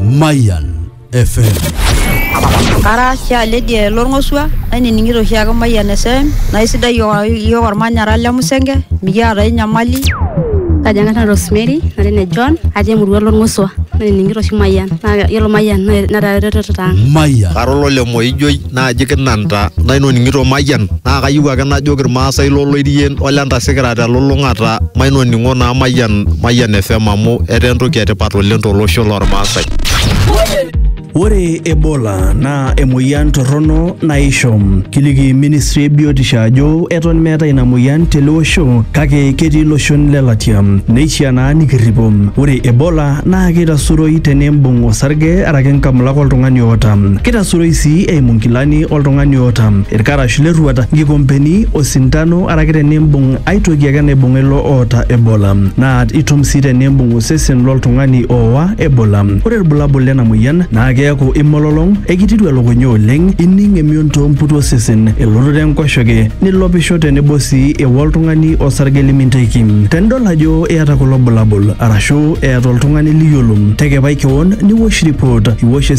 Mayan FM. Kara oshi aledi lorng'osua nainining'ito oshi ake Mayian FM naa isidai iyiook ormanyara le Musenge mikiata ai nyamali. Kaji ang'ata Rosemary natii ne John atii emurua lorng'osua nainining'ito oshi Mayian naa yiolo Mayian netaa eretoto ang'. Mayan. Kara olole Moijoi naaji kinanta nainoning'ito mayian naa kayieu ake najoki irmaasai loloirien ole ntasikira telulung'ata mainoning'o naa mayian mayian fm amu etaa entoki etipat oleng tolosho lormaasai Ore Ebola naa emoyian torrono naishom. Kiliki ministry e biotisho ajo eton meetae ina moyian tele osho kake ketii iloshon le latia. Neishiaa naa nikirripo. Ore Ebola naa keitasuroi teneimbung osarge araki nkamulak oltung'ani oota. Kita suroi sii eimu nkilani oltung'ani oota ilkarash le rruat, nkikompeni, osintano araki tenimbung ai toki ake naibung'a ilo oota Ebola. Naa itum sii tenimbung osesen lo ltung'ani ooa Ebola. Ore ilbulabul lena moyian naa keaku imololong, ekitiru elukunya oleng, ining emion too mputu osesen, elototo enkoshoke, nilopisho tenebo sii eo oltung'ani osarge liminteiki. Tenidol ajo iyata kulo bulabul arashu eeta oltung'ani liyiolo, tekepai kewon niwosh ripot. Iwosh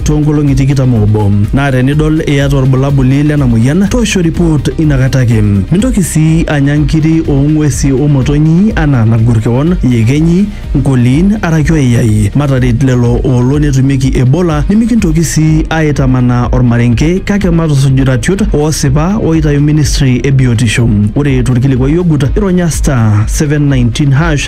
toonkolong'i tikitam oobo naa tenidol iyata olbulabuli lena moyian toosho ripoot inakata ake. Mintoki sii anya nkiri oo ng'uesi o motonyi anaa nagor kewon, iyekenyi, nkoliin araki oyayai. Mataret lelo oolo netumieki Ebola nimikintoki sii aaitamanaa olmarenke kake matusuj iratiot oosipa ooitayu ministri e biotisho. Ore tolkilikuai ogut, ironya *719#.